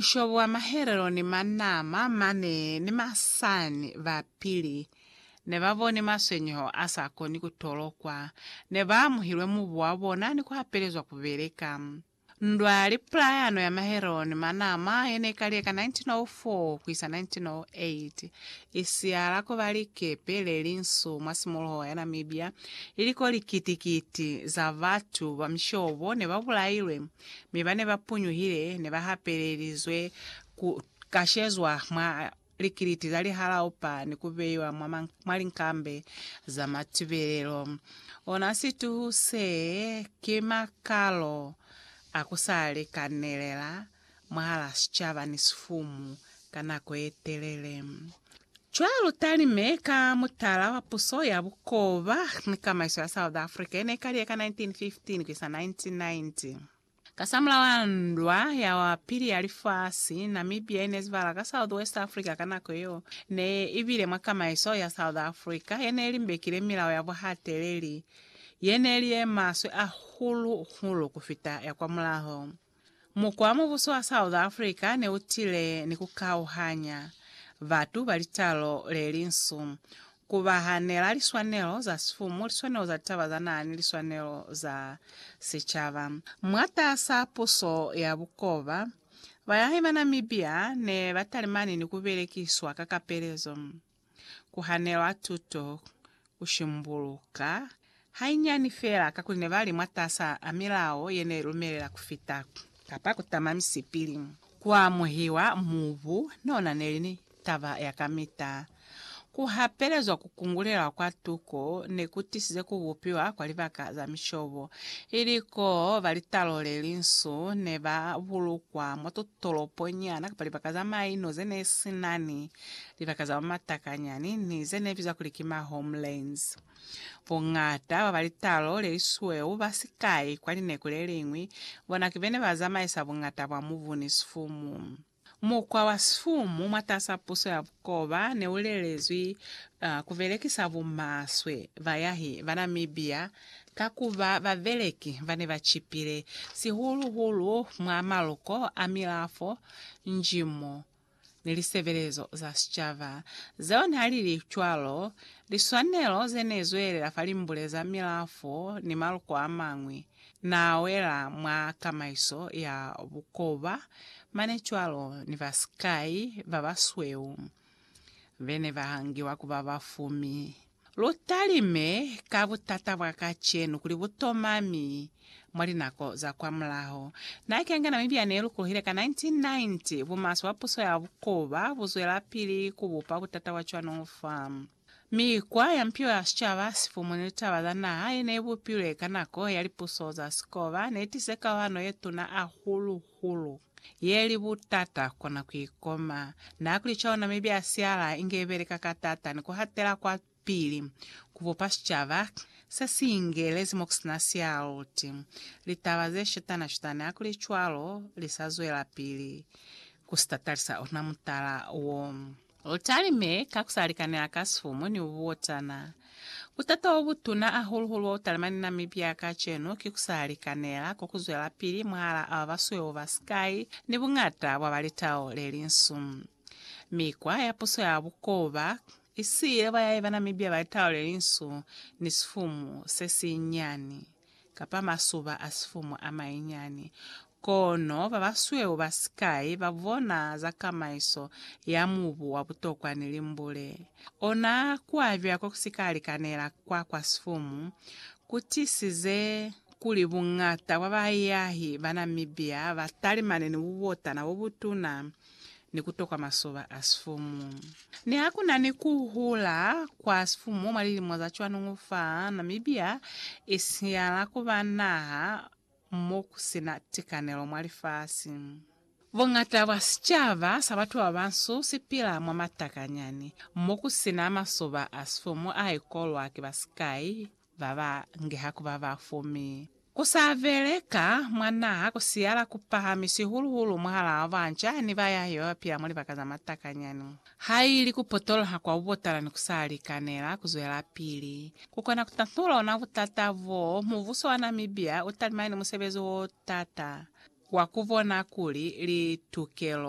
Mushobo wa mahelelo ni manama mane ni masani ba pili ne ba boni maswenyeho a sa koni ku tolokwa. Ne ba amuhilwe mubu wa bona ni ku hapelezwa ku beleka. Ndwa ya lipulayano ya mahelelo ni manama ye ne kaliye ka 1904 ku isa 1908, i siyala ku ba likepe le linsu mwa simuluho ya Namibia iliko likiti-kiti za batu ba mishobo ne ba bulailwe. Mi bane ba punyuhile ne ba hapelelizwe ku kashezwa mwa likiliti za lihalao pa ni ku beiwa mwa linkambe za matubelelo. Ona situhu se ki makalo a ku sa likanelela mwahala sicaba ni sifumu ka nako ye telele. Cwalo talime ka mutala wa puso ya bukoba ni kamaiso ya South Africa ye ne ka liye ka 1915 ku isa 1990. Kasamulaho wa ndwa ya wa pili ya lifasi, Namibia ye ne zivala ka Southwest Africa ka nako yeo ne i bile mwa kamaiso ya South Africa ye ne limbekile milao ya buhateleli ye ne li ye maswe ahulu-hulu ku fita ya kwamulaho. Mukwa mubuso wa South Africa ne u tile ni ku kauhanya batu ba litalo le linsu, ku ba hanela liswanelo za sifumu, liswanelo za litaba za naha ni liswanelo za sicaba. Mwatas'a puso ya bukoba, bayahi ba Namibia ne ba talimani ni ku belekiswa ka kapelezo. ku hanelwa tuto, ku shimbuluka, hainyani fela kakuli ne ba li mwataasa a milao ye ne lumelela ku fita, kapa ku tama misipili, ku amuhiwa mubu no na ne li taba ya kamita. Ku hapelezwa ku kungulelwa kwa tuko ne ku tisize ku bupiwa kwa libaka za mishobo, ili koo ba litalo le linsu ne ba bulukwa mwa ku tolopo nyana kapa libaka za maino ze ne si na ni libaka za mamatakanyani ni ze ne bizwa kuli ki ma homelands. Bongata ba ba litalo le lisweu ba sikai kwa lineku le liñwi bona ki bene ba zamaisa bongata bwa mubu ni sifumu. Mukwa wa sifumu mwatas'a puso ya Koba ne u lelezwi ku belekisa bumaswe bayahi ba Namibia ka ku ba babeleki ba ne ba cipile, sihulu-hulu mwa maloko a milafo, njimo, ni lisebelezo za sicaba. Zeo n'a li cwalo, liswanelo ze n'e zwelela fa limbule za milafo ni maloko a mañwi Na wela mwa kamaiso ya bukoba mane cwalo ni ba sikai ba basweu be ne ba hangiwa ku ba bafumi. Lu talime ka butata bwa kacenu kuli bu tomami mwa linako za kwamulaho. Na kenga Namibia ne lukulohile ka 1990, bumaswe bwa puso ya bukoba bu zwelapili ku bupa butata bwa cwano fa. Mikwa ya mpilo ya sicaba, sifumu ni litaba za naha ye ne i bupilwe ka nako ya lipuso za sikoba ne i tize kauhano ye tuna hahulu-hulu ye li butata ku kona ku i koma. Na ku li cwalo, Namibia ya siala inge i beleka ka taata ni ku hatela kwapili ku bupa sicaba se si ingelezi mo ku si na sialuti. Litaba ze shutana-shutani ha ku li cwalo li sa zwelapili ku si tatalisa ona mutala wo. U talime ka ku sa likanela ka sifumu ni buotana. Butata bo butuna ahulu-hulu bo bu talimani Namibia kacenu ki ku sa likanela ko ku zwelapili mwahalaa ba basweu ba sikai ni buñata bwa ba litao le linsu. Mikwa ya puso ya bukoba i siile ba yaiba Namibia ba litao le linsu ni sifumu se sinyani. kapa masuba a sifumu a manyinyani, kono babasweu ba sikai ba bona za kamaiso ya mubu wa butokwa ni limbule. Ona kuabila ko ku si ka likanela kwa kwa sifumu ku tisize kuli buñata bwa baahiahi ba Namibia ba talimane ni bubotana bo butuna ni ku tokwa masoba a sifumu. Ni ha ku na ni ku hula kwa sifumu mwa lilimo za cwanuñu fa Namibia, i siyala ku ba naha mo ku si na tikanelo mwa lifasi. Buñata bwa sicaba sa batu ba bansu si pila mwa matakanyani, mo ku si na masoba a sifumu a ikolwa ki ba sikai Ba ba ngeha ku ba ba fu mi ku sa vele ka mwa naha ku siyala ku pahami sihulu-hulu mwahalaa banca ni ba yahe ba ba pila mwa libaka za matakanyani. Ha ili ku potoloha kwa bubotala ni ku sa likanela ku zwelapili, ku kona ku tahnula ona butata boo, mubuso wa Namibia u talimani ni musebezi o taata wa ku bona kuli litukelo,